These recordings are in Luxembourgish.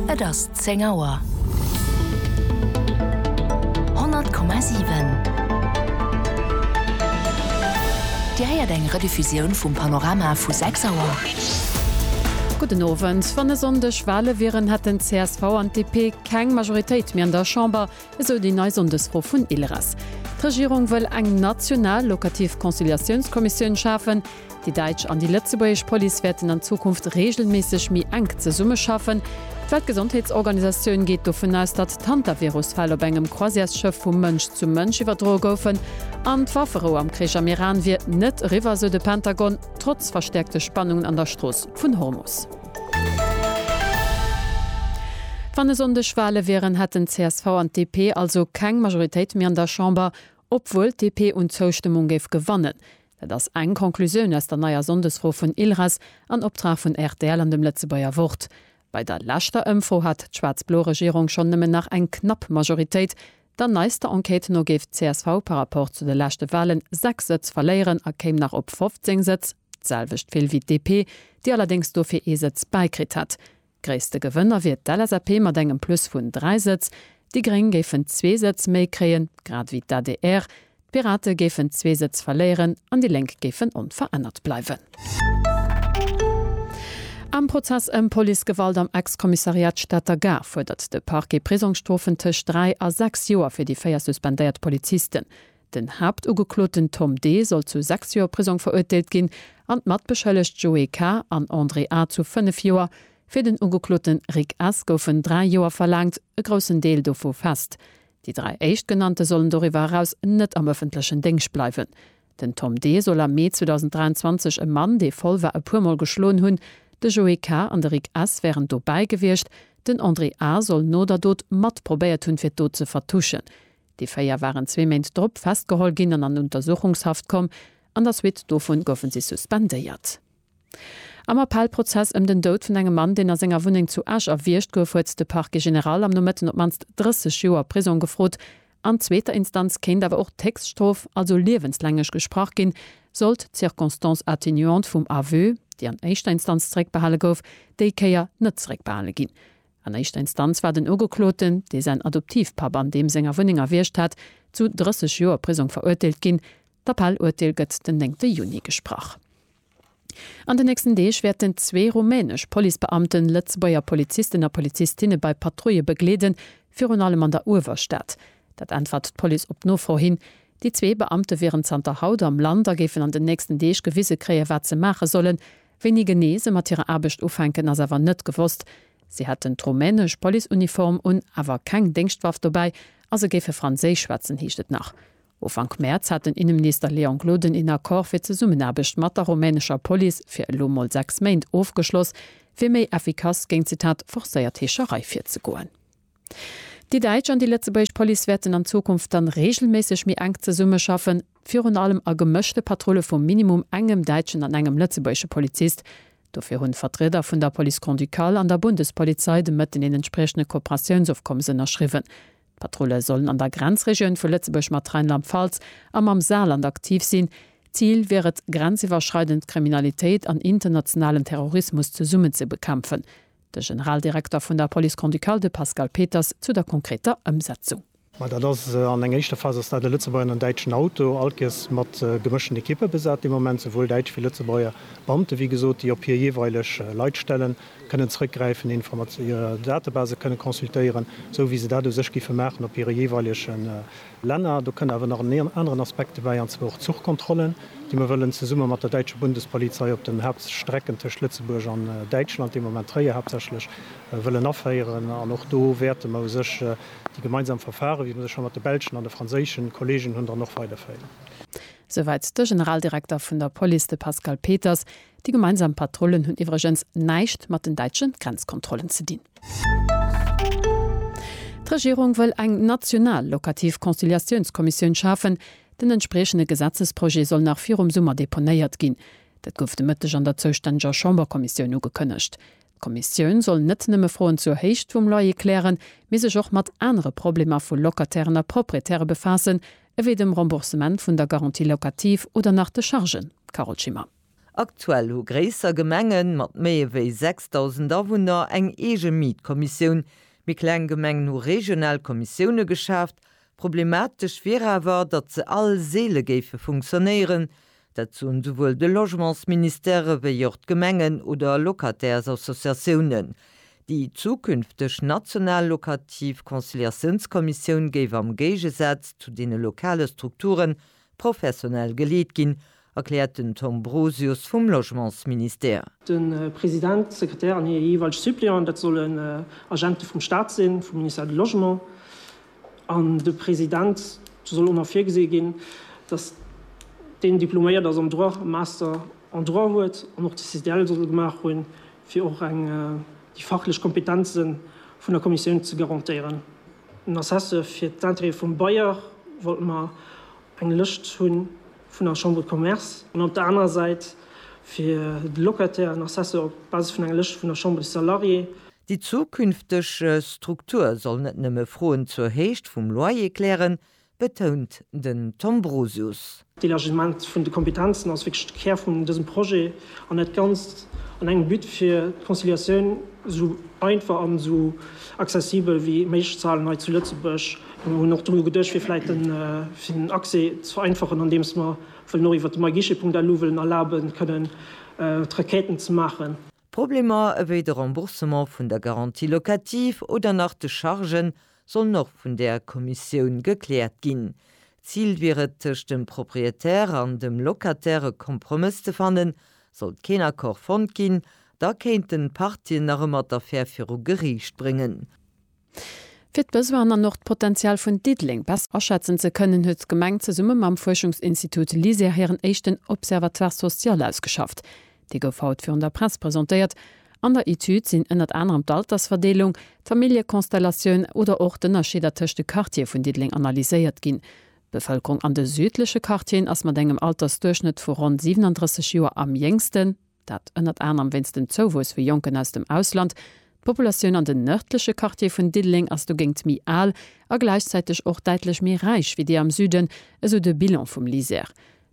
Et ass zéng Auer. 100,7 Dir héiert eng Rediffusioun vum Panorama vu 6 Auer. Gudden Owend. Wann e Sonndeg Wale wieren, hätten d'CSV an d'DP keng Majoritéit méi an der Chamber, esou déi nei Sonndesfro vun ILRES. D'Regierung wëll eng national lokativ Conciliatiounskommissioun schafen. Déi däitsch an déi lëtzebuergesch Police wäerten an Zukunft reegelméisseg méi enk zesummeschaffen. D'Weltgesondheetsorganisatioun geet dovun aus, datt d'Hantavirus-Fäll op engem Croisièresschëff vu Mënsch zu Mënsch iwwerdroe goufen. An d'Wafferou am Krich am Iran wier net eriwwer, sou de Pentagon, trotz verstäerkte Spannungen an der Strooss vun Hormus. Wann e Sonndeg Wale wieren, hätten d'CSV an d'DP also keng Majoritéit méi an der Chamber, obwuel d'DP un Zoustëmmung géif gewannen. Dat ass eng Conclusioun aus der neier Sonndesfro vun ILRAS an Optrag vun rtl an dem Lëtzebuerger Wort. Bei der leschter Ëmfro hat d'schwaarz-blo Regierung schonn nëmmen nach eng knapp Majoritéit. Der neister Enquête no géif csv par Rapport zu de leschte Walen 6 Sëtz verléieren a kéim nach op 15 Sëtz, d'selwecht vill wéi DP, déi allerdéngs dofir ee Sëtz bäikritt hätt. Gréisste Gewënner wier d'LSAP mat engem Plus vun 3 Sëtz, déi Gréng géifen zwee Sëtz méi kréien, grad ewéi d'ADR, d'Pirate géifen zwee Sëtz verléieren an déi Lénk géifen onverännert bleiwen. Am Prozess ëm Policegewalt am Ex-Kommissariat Stater Gare fuerdert de Parquet Prisongsstrofen tëscht dräi a sechs Joer fir déi véier suspendéiert Polizisten. Den Haaptugekloten Tom D. soll zu 6 Joer Prisong verurteelt ginn an d'Matbeschëllegt Joé K. an André A. zu 5 Joer. Fir den Ugekloote Rick S. goufen 3 Joer verlaangt, e groussen Deel dovu fest. Déi dräi Éischtgenannte sollen doriwwer eraus net am ëffentlechen Déngscht bleiwen. Den Tom D. soll am Mee 2023 e Mann, dee voll war, e puermol geschloen hunn. De Joé K. an de Rick S. wären dobäi gewiescht. Den André A. soll no der Dot mat probéiert hunn, fir d'Dot ze vertuschen. Déi véier waren zwee Méint drop festgeholl ginn an an Untersuchungshaft komm. An der Suite dovun goufe si suspendéiert. Am Appellprozess ëm den Doud vun engem Mann, deen a senger Wunneng zu Esch erwiergt gouf, huet de Parquet général am Nomëtten op d'mannst 30 Joer Prisong gefrot. An zweeter Instanz kéint awer och d'Héchststrof, also liewenslänglich, gesprach ginn, sollt d'Circonstance atténuante vum Aveu, déi an éischter Instanz zeréckbehale gouf, déi Kéier net zeréckbehale ginn. An éischter Instanz war den Ugekloten, dee säin Adoptivpapp an deem senger Wunneng erwiergt hat, zu 30 Joer Prisong verurteelt ginn. D'Appell-Urteel gëtt den 9 Juni gesprach. An den nächsten Deeg wäerten zwee rumänesch Policebeamten Lëtzebuerger Polizisten a Polizistinne bei Patrouille begleeden, virun allem an der Uewerstad. Dat äntwert d'Police op Nofro hin. Déi zwee Beamte wieren zanter haut am Land a géifen an den nächsten Deeg gewise kréien, wat se maache sollen. Wéini genee se mat hirer Aarbecht ufänken, ass awer net gewosst. Si hätten d'rumänesch Policeuniform un, awer keng Déngschtwaff dobäi a se géife Franséisch schwätzen, heescht et nach. Ufank Mäerz hat den Inneminister Léon Gloden een Accord fir d'Zesummenaarbecht mat der rumänescher Police fir elo mol sechs Méint ofgeschloss, fir méi effikass géint, Zitat, forcéiert Heescherei virzegoen. Déi däitsch an déi lëtzebuergesch Police wäerten an Zukunft dann reegelméisseg méi enk zesummeschaffen, virun allem a gemëschte Patrulle vu minimum engem däitschen an engem lëtzebuergesche Polizist. Dofir hunn d'Vertrieder vun der Police Grand-Ducale an der Bundespolizei de Mëtten een entspriechende Kooperatiounsofkommes ënnerschriwwen. D'Patrulle sollen an der Grenzregioun vu Lëtzebuerg mat Rheinland-Pfalz a mam Saarland aktiv sinn. Zil wier et, grenziwwerschreidend Kriminalitéit an internationalen Terrorismus zesummen ze bekämpfen. De Generaldirekter vun der Police Grand-Ducale, de Pascal Peters, zu der konkreter Ëmsetzung. Ma dat ass an enger éischter Phas ass dat e Lëtzebuerger an en däitschen Auto, alkes mat gemëschten Ekippe besat. Dee Moment souwuel däitsch wéi Lëtzebuerger Beamte, wéi gesot, déi op hir jeeweileg Leitstellen kënnen zrëckgräifen, hir Datebasen kënnen consultéieren, esou wéi se dat u sech géife maachen op hire jeeweilegen Länner. Do kënn awer nach en aneren Aspekt dobäi, an zwar och d'Zuchkontrollen, déi mer wëllen zesumme mat der däitscher Bundespolizei op den Hauptstrecken tëscht Lëtzebuerg an Däitschland, deem Ament Tréier haaptsächlech, wëllen aféieren. An och do wäerte mer u sech déi gemeinsam Verfare, wéi mer se scho mat de belschen an de franséische Kolleegen hunn, dann och weiderféieren. Souwäit de Generaldirekter vun der Police, de Pascal Peters. Déi gemeinsam Patrullen hunn iwwregens näischt mat den däitsche Grenzkontrollen ze dinn. D'Regierung wëll eng national lokativ Conciliatiounskommissioun schafen. Den entspriechende Gesetzesprojet soll nach virum Summer deponéiert ginn. Dat gouf de Mëtteg an der zoustänneger Chamberkommissioun ugekënnegt. D'Kommissioun soll net nëmme Froen zur Héicht vum Loyer klären, mee sech och mat anere Problemer vu Locatairen a Proprietäre befaassen, ewéi dem Remboursement vun der Garantie locative oder nach de Chargen. Carole Schimmer. Aktuell hu gréisser Gemenge mat méi ewéi 6.000 Awunner eng eege Mietkommissioun. Méi kleng Gemengen hu regional Kommissioune geschaaft. Problematesch wier awer, datt se all seele géife funktionéieren, Dat soen souwuel de Logementsministère ewéi och d'Gemengen oder Locataires-Associatiounen. Déi zukünfteg national lokativ Conciliatiounskommissioun géif am Géigesaz zu deene lokale Strukture professionell geleet ginn, erkläert den Tom Brosius vum Logementsministère. De President, d'Sekretär an hir jeeweilg Suppleanten, dat solle Agente vum Staat sinn, vum Ministère du Logement. An de President soll och nach virgesi ginn, datt deen diploméiert ass am Droit, e Master en Droit huet an och de CDL soll gemaach hunn, fir och eng déi fachlech Kompetenze vun der Kommissioun ze garantéieren. En Assesseur fir d'Intérêt vum Bailleur wollt mer eng Lëscht hunn, vun der Chambre de Commerce an op der anerer Säit fir de Locataire en Assesseur op Basis vun enger Lëscht vun der Chambre des Salariés. Déi zukünfteg Struktur soll net nëmme Froen zur Héicht vum Loyer klären, betount den Tom Brosius. D'Elargissement vun de Kompetenzen ass wierklech de Kär vun dësem Projet an dat Ganzt an engem But fir d'Conciliatioun esou einfach an esou accessibel wéi méiglech ze halen hei zu Lëtzebuerg. Mir hunn och dono geduecht, fir vläit de fir den Accès ze vereinfachen, andeems mer wëllen och iwwert de myguichet.lu wëllen erlaben, kënnen d'Requêten ze maachen. Problemer ewéi de Remboursement vun der Garantie locative oder nach de Chargen sollen och vun der Kommissioun gekläert ginn. Zil wier et, tëscht dem Proprietär an dem Locataire e Kompromëss ze fannen. Sollt keen Accord fonnt ginn, da kéinten d'Partien nach ëmmer d'Affär viru Geriicht bréngen. Fir d'Besoinen an och d'Potential vun Diddeleng besser aschätzen ze kënnen, huet d'Gemeng zesumme mam Fuerschungsinstitut LISER hiren éischten Observatoire social ausgeschafft. Dee gouf haut virun der Press presentéiert. An der Etüd sinn ënnert anerem d'Altersverdeelung, d'Familljekonstellatioun oder och d'Ënnerscheeder tëscht de Quartiere vun Diddeleng analyséiert ginn. D'Bevëlkerung an de südleche Quartieren ass mat engem Altersduerchschnëtt vu ronn 37 Joer am jéngsten. Dat ënnert anerem wéinst dem Zouwuess vu Jonken aus dem Ausland. D'Populatioun an den nërdleche Quartiere vun Diddeleng ass dogéint méi al a gläichzäiteg och däitlech méi räich wéi déi am Süden, esou de Bilan vum LISER.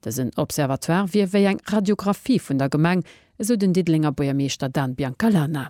Dësen Observatoire wier wéi eng Radiographie vun der Gemeng, esou den Diddelenger Buergermeeschter Dan Biancalana.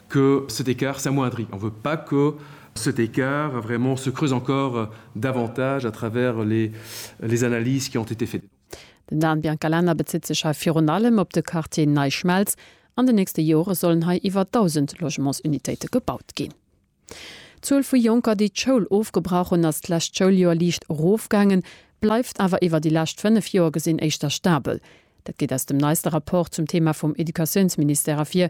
que cet écart s'amoindrit, on veut pas que cet écart vraiment se creuse encore davantage à travers les les analyses qui ont été faites. Den Dan Biancalana bezitt sech hei virun allem op de Quartier Nei Schmelz. An den nächste Jore sollen hei iwwer 1.000 Logementsunitéite gebaut ginn. D'Zuel vu Jonker, déi d'Schoul ofgebrach hunn, ass d'lescht Schouljoer liicht erofgaangen, bleift awer iwwer déi lescht fënnef Joer gesinn éischter stabel. Dat geet aus dem neiste Rapport zum Thema vum Educatiounsministère ervir.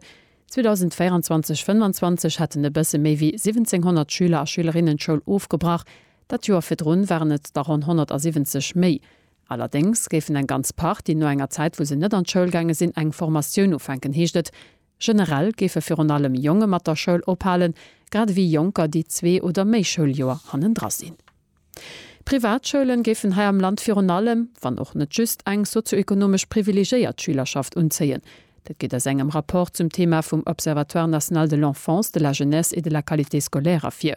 2024, 25 hätten e bësse méi wéi 1700 Schüler a Schülerinnen d'Schoul ofgebrach, dat Joer virdrun waren et der ronn 170 méi. Allerdéngs géifen eng ganz Partie no enger Zäit, wou se net an d'Schoul gaange sinn, eng Formatioun ufänken, heescht et. Generell géife virun allem Jonge mat der Schoul ophalen, grad ewéi Jonker, déi zwee oder méi Schouljoer hannendra sinn. D'Privatschoule géifen hei am Land virun allem, wann och net just, eng sozioekonomesch privilegéiert Schülerschaft unzéien. Dat geet aus engem Rapport zum Thema vum Observatoire national de l'enfance, de la jeunesse et de la qualité scolaire ervir.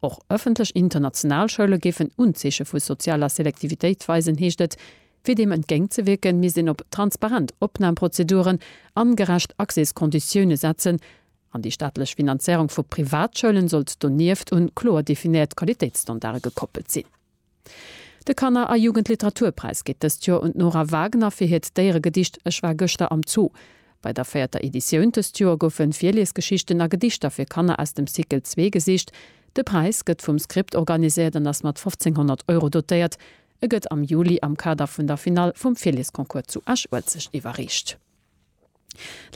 Och ëffentlech international Schoule géifen Unzeeche vu sozialer Selektivitéit weisen, heescht et. Fir deem entgéint ze wierken, misst een op transparent Opnamprozeduren an gerecht Accèskonditioune setzen. An déi staatlech Finanzéierung vu Privatschoulen sollt donieft un kloer definéiert Qualitéitsstandarde gekoppelt sinn. De Kanner a Jugendliteraturpräis geet dëst Joer un d'Nora Wagner fir hiert Déieregedicht Ech war gëschter am Zoo. Bei der véierter Editioun dëst Joer goufe Virliesgeschichten a Gedichter fir Kanner aus dem Cycle zwee gesicht. De Präis gëtt vum Script organiséiert an ass mat 1.500 Euro dotéiert. E gëtt am Juli am Kader vun der Finall vum Virliesconcours zu Esch-Uelzecht iwwerreecht.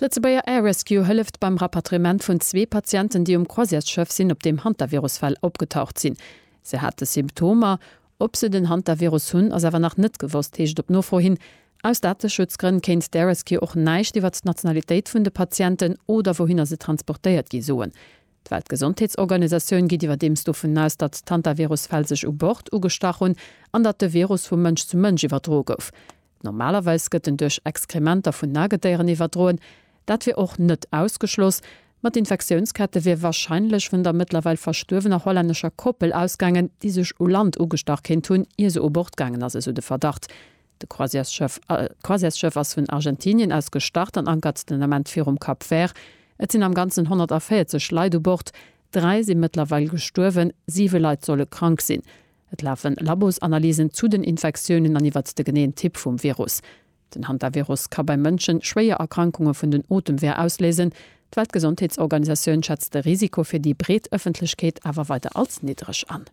D'Lëtzebuerger Air Rescue hëlleft beim Rapatriement vun zwee Patienten, déi um Croisièresschëff sinn, op deem Hantavirus-Fäll opgetaucht sinn. Se hate Symptomer. Ob se den Hantavirus hunn, ass awer nach net gewosst, heescht et op Nofro hin. Aus Dateschutzgrënn kéint d'Air Rescue och näischt iwwert d'Nationalitéit vun de Patienten oder wouhinner se transportéiert gi soen. D'Weltgesondheetsorganisatioun geet iwwerdeems dovun aus, datt d'Hantavirus-Fäll sech u Bord ugestach hunn an datt de Virus vu Mënsch zu Mënsch iwwerdro gouf. Normalerweis gëtt en duerch Exkrementer vun Nagedéieren iwwerdroen. Dat wier och net ausgeschloss, ma d'Infektiounskette wier warscheinlech vun der mëttlerweil verstuerwener hollännescher Koppel ausgaangen, déi sech u Land ugestach kéint hunn, ier se u Bord gaangen ass, esou de Verdacht. De Croisièresschëff ass vun Argentinien aus gestart an ankert den Ament virum Cap Vert. Et sinn am Ganzen 140 Leit u Bord, dräi si mëttlerweil gestuerwen, siwe Leit solle krank sinn. Et lafen Labosanalysen zu den Infektiounen an iwwert de geneeën Typ vum Virus. Den Hantavirus ka bei Mënschen schwéier Erkrankunge vun den Otemweer ausléisen. D'Weltgesondheetsorganisatioun schätzt de Risiko fir déi breet Ëffentlechkeet awer weider als niddreg an.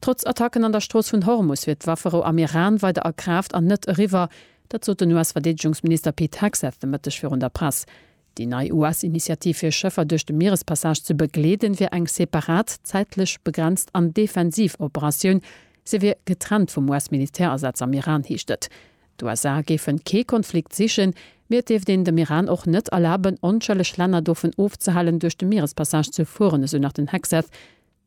Trotz Attacken an der Strooss vun Hormus wier d'Wafferou am Iran weider a Kraaft an net eriwwer. Dat sot den US-Verdeedegungsminister Pete Hegseth de Mëtteg virun der Press. Déi nei US-Initiativ fir Schëffer duerch de Mierespassage ze begleeden, wier eng separat, zäitlech begrenzt an defensiv Operatioun. Se wier getrennt vum US-Militärasaz am Iran, heescht et. D'USA géifen kee Konflikt sichen, mee et dierft een dem Iran och net erlaben, onschëlleg Länner dovun ofzehalen, duerch de Mierespassage ze fueren, esou nach den Hegseth.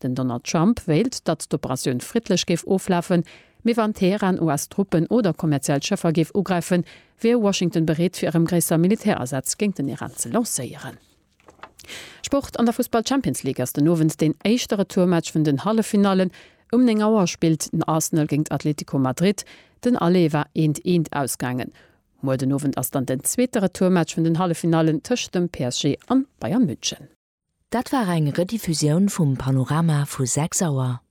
Den Donald Trump wéilt, datt d'Operatioun friddlech géif oflafen, mee wann Teheran US-Truppen oder kommerziell Schëffer géif ugräifen, wier Washington bereet fir erëm gréisser Militärasätz géint den Iran ze lancéieren. Sport, An der Fussball-Champions League ass den Owend deen éischte Retourmatch vun den Halleffinallen. Um 9 Auer spillt den Arsenal géint Atletico Madrid. Den Aller war eent, eent ausgaangen. Muer den Owend ass dann den zweete Retourmatch vun den Halleffinallen tëscht dem PSG an Bayern München. Dat war eng Rediffusioun vum Panorama vu 6 Auer.